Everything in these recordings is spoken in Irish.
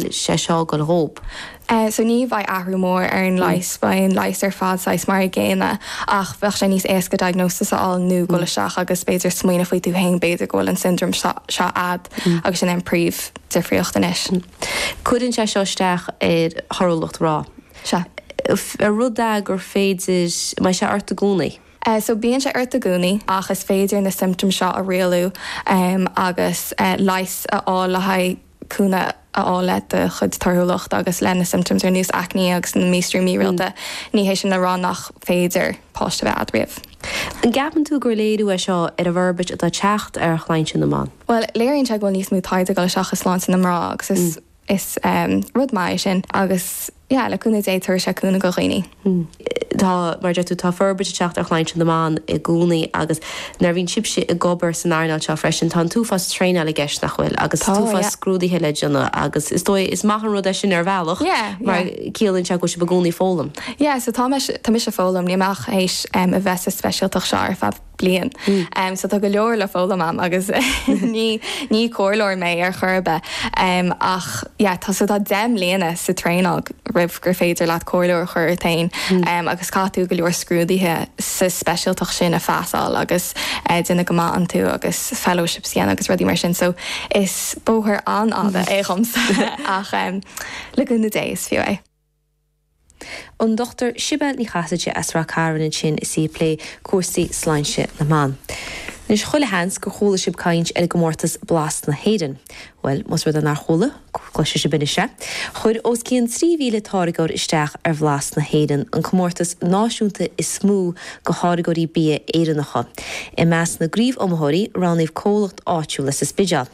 sé seo go hóg. So ní bheidh athrú mór ar an leigheas, beidh an leigheas ar fad saghas mar an gcéanna ach bheadh sé níos éasca diagnosis a fháil nó dul isteach agus b'fhéidir smaoineamh faoi tú féin, b'fhéidir go bhfuil an syndrome seo a'd agus sin é an phríomhdhifríocht anois. Cuireann sé seo isteach ar thorthúlacht mná. Sea. An rud é gur féidir, an mbeidh sé ort i gcónaí? So bíonn sé ort i gcónaí ach is féidir na symptoms seo a rialú agus leigheas a fháil le haghaidh. cúnamh a fháil le do chuid torthúlacht agus le na symptoms ar nós acne agus na míostraí mírialta, ní hé sin le rá nach féidir páiste bheith agat riamh. An gceapann tú gur léiriú é seo ar an bhforbairt atá ag teacht ar shláinte na mban? Bhuel, léiríonn sé go bhfuil níos mó taighde ag dul isteach i sláinte na mná agus is rud maith é sin agus. Yeah, le cúnamh Dé tabharfaidh sé cúnamh do dhaoine. Tá, mar a deir tú, tá forbairt ag teacht ar shláinte na mban i gcónaí agus nuair a bhíonn sibhse ag obair san earnáil seo freisin tá an t-uafás traenála i gceist, nach bhfuil, agus Tá, an t-uafás yeah. scrúduithe le déanamh agus is dóigh, is maith an rud é sin ar bhealach Yeah, yeah. mar ciallaíonn sé go bhfuil sibh i gcónaí ag foghlaim. Yeah, so tá mise, tá mise ag foghlaim, níl mé ach théis a bheith sa speisialtacht seo ar feadh bliain, so tá go leor le foghlaim a'm agus ní ní comhairleoir mé ar chor ar bith em ach yeah tá so tá deich mbliana sa traenáil roimh gur féidir leat comhairleoir a thabhairt ort féin em agus caithfidh tú go leor scrúduithe sa speisialtacht sin a phassáil agus eh déanamh go maith iontu agus fellowships a dhéanamh agus rudaí mar sin so is bóthar an-fhada é dhomsa ach em le cúnamh Dé is fiú é. an Dr Sibéal Ní Chasaide as Rath Cairn ansin is í ag plé cúrsaí sláinte na mban. Anois, chuile sheans gur chuala sibh caint ar an gcomórtas Blas na hÉireann. Bhuel, más rud é nár chuala, cloisfidh sibh anois é. Chuir os cionn 3,000 táirgeoir isteach ar Bhlas na hÉireann, an comórtas náisiúnta is mó do tháirgeoirí bia Éireannacha. I measc na gcraobh-iomaitheoirí, roghnaíodh comhlacht áitiúil as an Spidéal.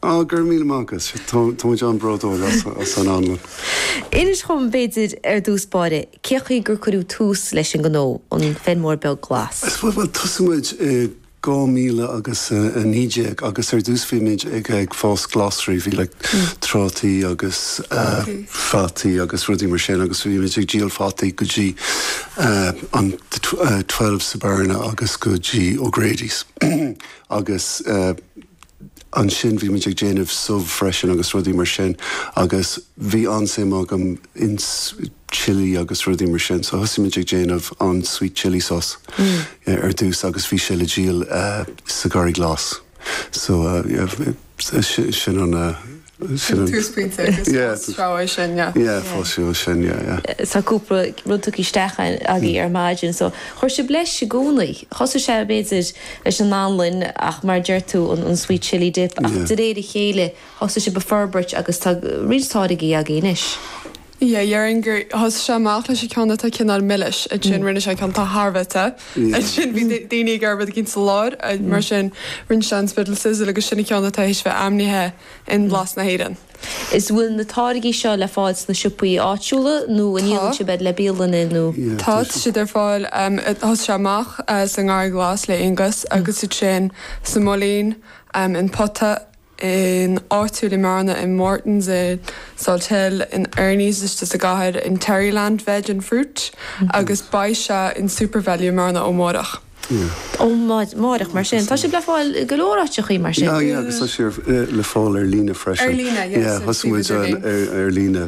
Á, go raibh míle maith agat. Tá muid an-bhródúil as an anlann. Inis dhom, b'fhéidir, ar dtús báire, cé chaoi gur cuireadh tús leis an ngnó, an Feirmeoir Beag Glas? Bhuel, thosaigh muid i 2000 agus 19 agus ar dtús bhí muid ag fás glasraí, bhí like trátaí agus fataí agus rudaí mar sin agus bhí muid ag díol fataí go dtí an Twelve sa Bearna agus go dtí O'Grady's agus. ansin bhí muid ag déanamh subh freisin agus rudaí mar sin agus bhí an-suim agam ins chilli agus rudaí mar sin so thosaigh muid ag déanamh an sweet chilli sauce ar dtús agus bhí sé le díol sa Gharraí Glas so sin an Sin an túsphointe agus fás treabh é sin, yeah. Yeah, fás treabh é sin, yeah, yeah. Tá cúpla rud tugtha isteach agaibh ar maidin so chuir sibh leis i gcónaí. Thosaigh sé, b'fhéidir, leis an anlann ach mar a deir tú, an sweet chilli dip ach de réir a chéile thosaigh sibh ag forbairt agus tá roinnt táirgí agaibh anois. Yeah, dhéarfainn gur thosaigh sé amach leis an gceann atá cineál milis, ansin rinne sé an ceann atá thar a bheith te, ansin bhí daoine ag iarraidh ceann sa lár, mar sin rinne sé an Spiddal Sizzle agus sin an ceann atá théis bheith ainmnithe in Blas na hÉireann. An bhfuil na táirgí seo le fáil sna siopaí áitiúla nó an ndíolann sibh iad le bialanna nó? Tá, tá siad ar fáil, thosaigh sé amach sa nGarraí Glas le Aonghus agus ansin sa Moilín, in Pota, in Áitiúil i mBearna, in Morton's, i Salthill, in Ernie's istigh sa gcathair, in Terryland Veg and Fruit agus beidh sé in Supervalu i mBearna ó mháireach. ó mháireach mar sin. Tá siad le fáil i go leor áiteacha mar sin. Yeah, yeah agus tá siad le fáil ar líne freisin. Ar líne, yes. Yeah, thosaigh muid ar líne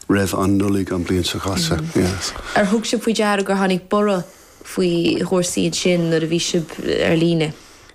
roimh an Nollaig an bhliain seo caite, yes. Ar thug sibh faoi deara gur tháinig borradh faoi chúrsaí ansin nuair a bhí sibh ar líne?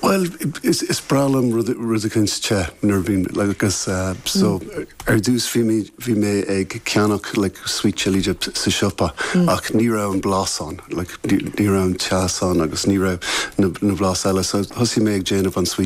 Bhuel, is breá liom rud eicínt te nuair a bhíonn, like, agus so ar dtús bhí mé, bhí mé ag ceannach, like, sweet chilli dip sa siopa ach ní raibh an blas ann, like, ní raibh an teas ann agus ní raibh na blas eile so thosaigh mé ag déanamh an sweet.